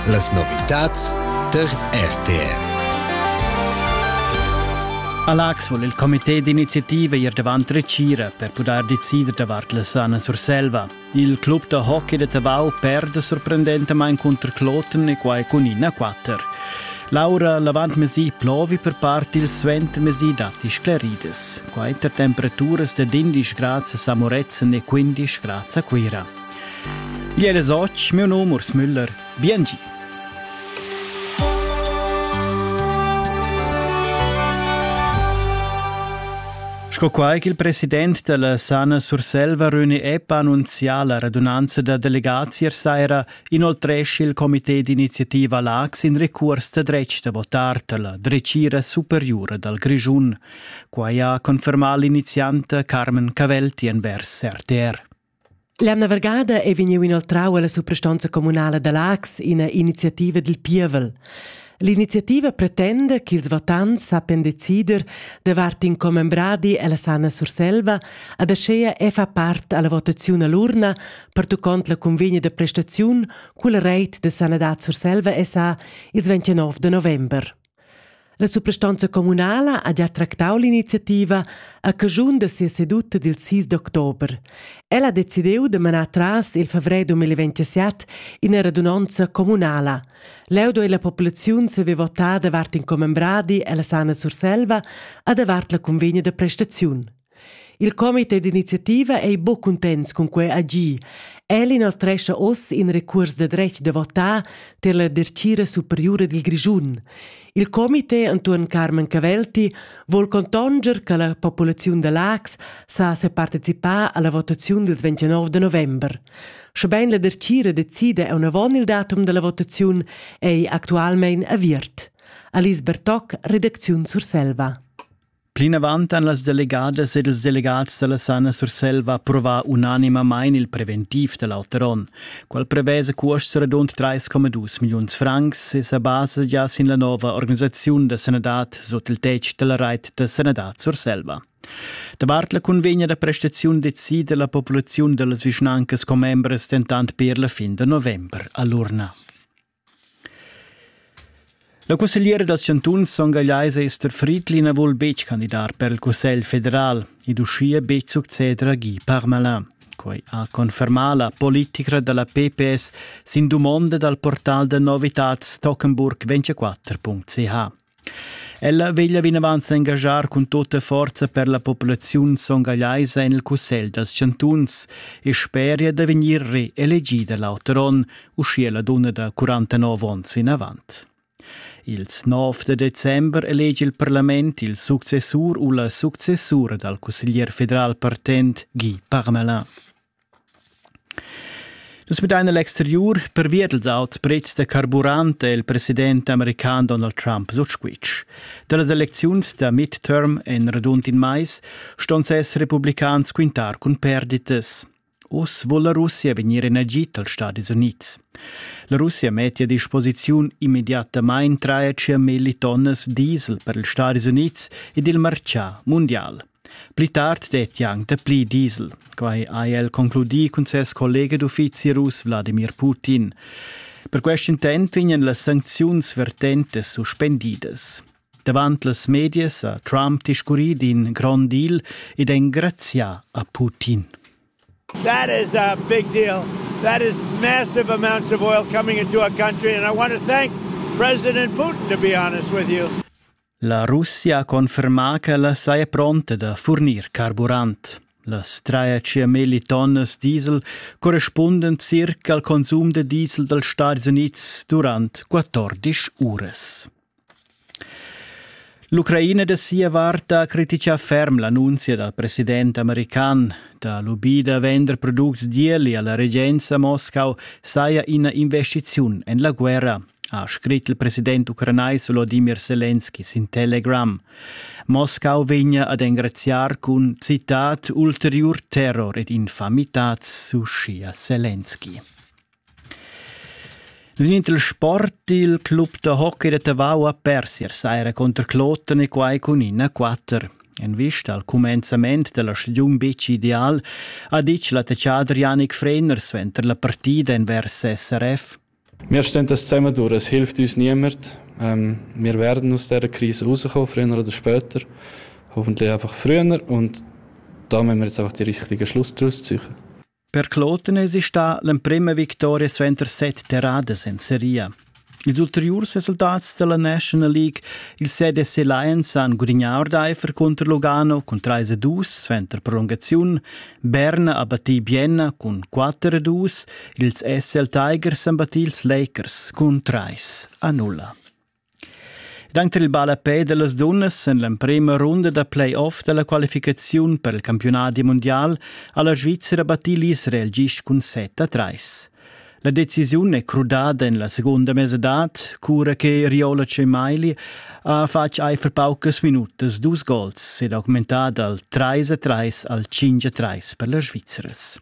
Las novitads der RTR. A Lax vul il comité d'iniziativa ir davant recira per pudair decider davart la sana Surselva. Il club da hockey de Tavau perde sorprendentamain contro Kloten e quai cun 1-4. Laura l'avantmesi plovi per part il suentermesi datti scleridas. Quai per temperaturas da 11 grad a Samoretzen e 15 grad a Cuira. Ier es och, meu nom Urs Müller. Biengi. Sco quai ch'il president della Sana Surselva Röni Epp annunzià la radunanza da delegazier saira inoltresci il comité d'iniziativa LAX in recurs da dretg da votar per la drecira superiura dal Grischun. Quai ha confermà l'inizianta Carmen Cavelti envers RTR. L'emna vargada è vegniu inoltrau alla suprastonza communala da Laax ina iniziativa dil pievel. L'iniziativa pretenda ch'ils votants sappian decider davart in commembradi alla Sanna Surselva ad aschea e fa part alla votaziun all'urna pertuccont la convegna da prestaziun culla reit da sanadad Surselva SA ils 29 de november. La suprastanza communala ha gia tractau l'iniziativa a caschun da sia seduta dil 6 d'october. Ella ha decidiu da manar tras il fevrer 2027 ina radunonza communala. Leu duei la populaziun saver votar davart in commembradi ella Sana Surselva a davart la convegna da prestaziun. Il comité d'iniziativa ei buc cuntents cun quei agir. El inoltrescha oz in recuors da dretg da votar tier la dertgira superiura dil Grischun. Il comité entuorn Carmen Cavelti vul contonger che la populaziun da Lax sa separticipar alla votaziun dils 29 de november. Schebein la dertgira decida aunavon il datum dalla votaziun ei actualmein aviert. Alice Bertoc, redacziun Surselva. Plinavant han las delegadas ed ils delegats da la Sana Surselva approvà unanimamain il preventiv da l'auter onn. Quel prevesa cuosts radund 3,2 milliuns francs e sa basa gia sin la nova organisaziun da sanadad sut il tetg da la rait da sanadad Surselva. Davart la cunvegna da prestaziun decida la populaziun da las vischnancas commembras dentant per la fin da november a l'urna. La cussegliera dals chantuns Son Gagliais Esther Friedli na vul betg candidar per il Cussegl federal. Ed uschia betg succeder a Guy Parmelin. Quai ha confermà la politica da la PPS sin dumonda dal portal da novitads Tockenburg24.ch. Ella veglia vinavant s'engaschar cun tutta forza per la populaziun songallaisa en il Cussegl dals chantuns e speria da vegnir reelegida l'auter onn, uschia la dunna da 49 onns vinavant. Ils 9 da december elegi il parlament il successur u la successura dal cusseglier federal partent Guy Parmelin. Nus vedein egl exteriur pervia dils auts prezs da carburant el president american Donald Trump sutsquitsch. Dallas elecziuns da midterm en radund in mais ston ses republicans quintar cun perditas. Oz vul la Russia vegnir en agit als Stadis Unids. La Russia meti a disposiziun immediatamain 3,5 millitonnas diesel per ils Stadis Unids ed il marcià mundial. Pli tard detti anc dapli diesel. Quai ha el concludì cun ses collega d'uffizi russ Wladimir Putin. Per quest intent vegnan las sancziuns vertentas suspendidas. Davant las medias ha Trump discurrì d'in grond deal ed engrazià a Putin. That is a big deal. That is massive amounts of oil coming into a country and I want to thank President Putin to be honest with you. La Russia ha confermà ch'ella saja pronta da furnir carburant. Las trais mil tonnas diesel correspundan circa al consum da diesel dals Stadis Unids durant 14 uras. L'Ucraina da sia vart ha criticà ferm l'annunzia dal president american da lubì da vender products d'ieli alla regenza Moscau saja ina investiziun en la guerra. ha scrit il president ucranais Volodimir Selenski sin Telegram. Moscau vegna ad engraziar cun citat ulteriur terror ed infamitat sushi a Selenski. Niente il sport, il club da hockey de Tavau a Persier saira contro Kloten e quai cun in a 4. En vista al cumenzament della stagiun bitg ideal ha ditg l'attacciader Yannick Freiner suenter la partida envers SRF. Mir stentas zusammenduras hilft uns niemand. Ähm, wir werden aus dieser Krise rauskommen, früher oder später. Hoffentlich einfach früher und da müssen wir jetzt einfach die richtigen Schluss daraus ziehen. Per Klotenes ist da l'emprima vittoria suenter set terradas in Serie. Ils ulteriurs resultats della National League, il CDC Lions han gudignà ordaifer contro Lugano cun 3-2 suenter prolungaziun, Berna ha battì Bienna cun 4-2 Ils SL Tigers han battì ils Lakers cun trais a nulla. Danter il ballapè dellas dunnas en l'emprema runda da playoff dalla qualificaziun per il campionat mundial ha la Svizzera battì l'Israel gist cun 7 a 3. La decisiun è crudada en la segunda mesadad, cura che Riola Cemaili ha fatg aifer paucas minutas dus gols ed ha augmentà dal 3 a 3 al 5 a 3 per las Svizzeras.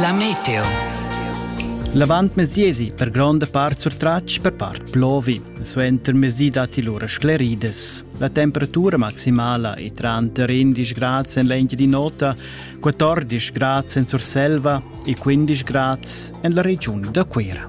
La meteo. L'avantmesiesi per gronda part surtratg per part plovi. Suenter mesi datti lura scleridas. La temperatura maximala è tranter 11 grad en l'engi di nota, 14 grad en Surselva e 15 grad en la regiun da Cuira.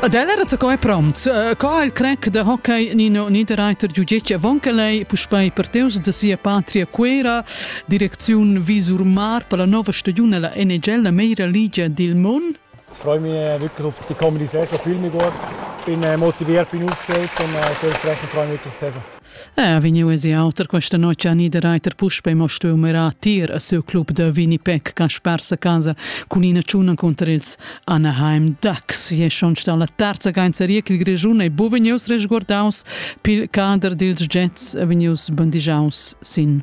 Ad el era co è prompt. Co il crack da hockey Nino Niederreiter giugetg avon che lei puspei parteus da sia patria Quera, direcziun Visurmar per la nova stagiun alla NHL, la meira ligia dil mund? Ich freue mich wirklich auf die kommende Saison. Ich fühle mich gut, bin motiviert, bin aufgestellt und dementsprechend freue ich mich wirklich die Saison. Eh, vegniu esi auter questa notg a Niederreiter puspe mo stuiu mirar tir a siu club da Winnipeg Kaspar sa casa cun ina tschuna conter ils Anaheim Ducks. E schon sta la terza gainzeria ch'il Grischun ei bu vegnius resguardaus pil cader dils Jets e vegnius bandigiaus sin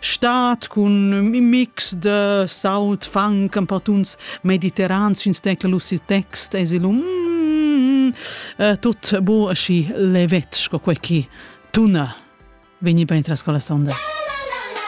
Stad cun ün mix de saut, funk, ein per tuns mediterrans, ins tecla lu sil text, es lu mm, eh, tut bu aschi levet sco quei chi tuna vegni bein tras con la sonda.